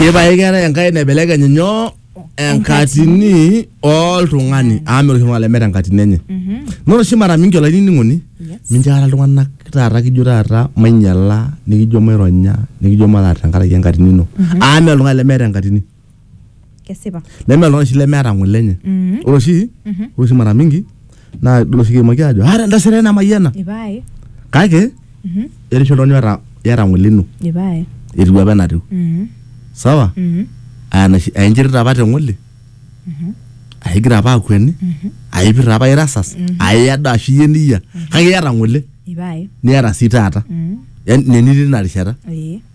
Ipae keetae enkai naibelekeny nyoo enkatini oltung'ani amu meeta oshi oltung'ani lemeeta enkatini enye naa ore oshi mara mingi olainining'oni mincho aikata iltung'anak taata kijo taata mainyiala nikijo maironya nikijo mataar tenkaraki enkatini ino amu meeta oltung'ani lemeeta enkatini kesipa neme oltung'ani oshi lemeeta ng'ole enye Mhm. ore oshi ore oshi mara mingi naa idol oshi kiimaki aajo aata endasere ai namayiana ipae kake Mhm. etii oshi oltung'ani oota iyata ng'ole ino ipae etiu apa enatiu Mhm. sawa Mhm. aa enashi- aa inchirita apa teng'ole aa igira apa akueni aa ipirta apa irasas aa iyado ashu iyie niyia kake iyata ng'ole ipae niata sii taata Mhm. Yaani nenitii ina rishata Ee.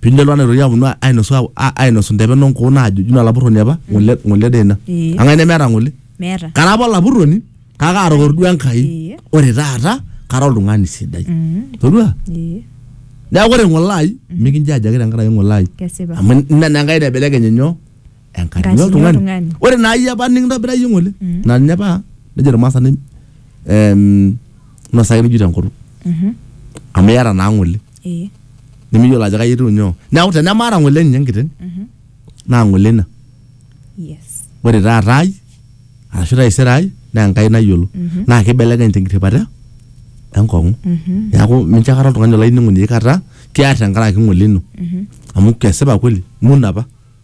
Pii lelo ana itoki aponu ainosu a- ainosu ndepen o nkuun aajo juu ina lapurroni apa ng'ole ng'ole dee ina. Ee. Kang'ai nemeeta ng'ole? Meeta. Kara apa olapurroni kake aatokoro duo Enkai. Ee. Ore taata kara oltung'ani sidai. Mm. Todua? Ee. Neeku ore ng'ole ai mikinjaaji ake tenkaraki ng'ole ai. Kesipa. Amu ina naa Enkai naibelekenye nyoo? Enkatini Enkatini oltung'ani. oltung'ani. Ore naa iyie apa nikintobira iyie ng'ole Mm. naa ninye apa nejo ilmaasani em nosaki nikijo tenkutuk. Mhm. Amu iyata naa ng'ole. ee nimiyiolo ajo kai etiu nyoo neeku tenemaata ng'ole ninye enkiteng naa ng'ole ina yes ore taata ai arashu taisere ai naa enkai nayiolo naa kibelekeny tenkirripata enkong'u neeku mincho akata oltung'ani olainining'oni aikata kiar tenkaraki ng'ole ino amu kesipa kweli imun apa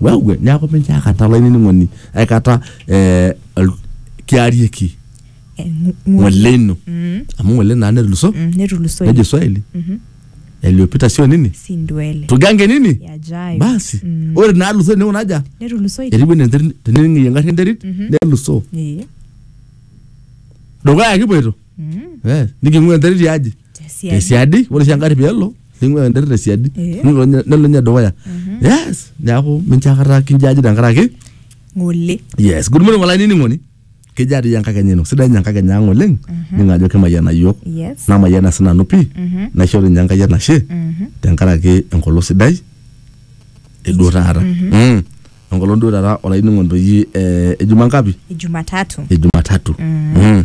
wewe neaku mincho aikata olainining'oni aikata eh, ol- kiarieki Eh, ng- ng- ng'ole ino Mm, amu ng'ole naa netuluso mm, netulusoy nejo swahili Mhm. yaliyopita sio nini si ndwele tugange nini yajayo basi Mm. ore naaluso newo naja netulusoy eribu enterit tenening'ie engarri enterit Mhm. neluso Eh, dukuya kipoito mm. eh, niking'ua enterit yaji Tesiadi. tesiadi ore oshi engari peelo ning'ua enterit tesiadi Eh. nelo ninye- nelo ninye dukuya yes neaku mincho akata kinjaji tenkaraki Ng'ole. yes good morning olainining'oni kejaa doi enkakenya ino sidai ninye enkakenya ang oleng ningo ajo kimayiana yiok Yes. namayiana sinanu pii naisho ninye enkai enashe tenkaraki enkolong sidai eduo taata Mm. enkolong duo taata olainining'oni doi eh, ejuma ngapi Jumatatu. ejumatatu Mm.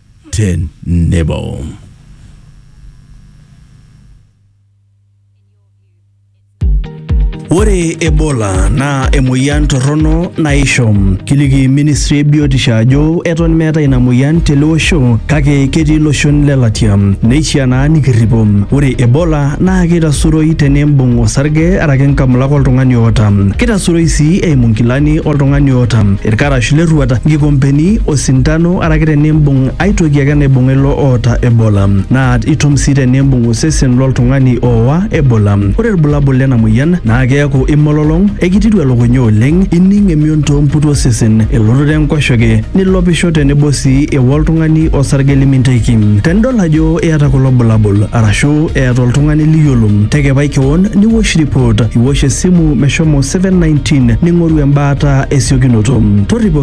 tenebo. Ore Ebola naa emoyian torrono naisho. Kiliki ministry e biotisho ajo eton meetae ina moyian tele osho kake ketii iloshon le latia. Neishiaa naa nikirripo. Ore Ebola naa keitasuroi tenimbung osarge araki nkamulak oltung'ani oota. Keitasuroi sii eimu nkilani oltung'ani oota, irkarash lerruat, nkikompeni, osindano araki tenimbung ai toki ake naibung'a ilo oota Ebola, naa itum sii tenimbung osesen loltung'ani oowa Ebola. Ore ilbulabul lena moyian naa keaku imololong, ekitiru elukunya oleng, ining emion too mputu osesen, elototo enkoshoke, nilopisho tenebo sii ewa oltung'ani osarge liminteki. Tenidol ajo iyata kulo bulabul arashu eeta oltung'ani liyiolo, tekepai kewon niwosh report, iwosh esimu meshomo 719 ning'oru embaata esiokinoto. Torripo.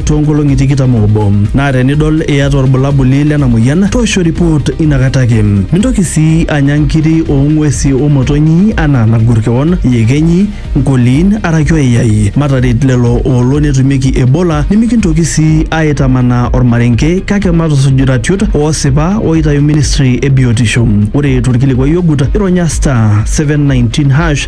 too nkolong'i tikitam oobo naa tenidol iyata olbulabuli lena moyian toosho report ina kata ake. Mintoki sii anya nkiri oo ng'uesi o motonyi anaa nagur kewon, iyekenyi, nkoliin araki oyayai. Mataret lelo oolo netumieki Ebola nimikintoki sii aaitamanaa olmarenke kake matusuj iratiot oosipa ooitayu ministry e biotisho. Ore to lkilikuai ogut ironya star, seven, nineteen hash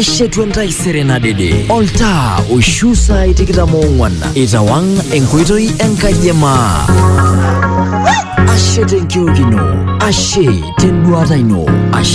eshetu entaisere nadede oltaa oishu saai tikitam oong'uan itawang enkoitoi enkaji e maa ashe tenkiok ino ashe tenduata ino ashe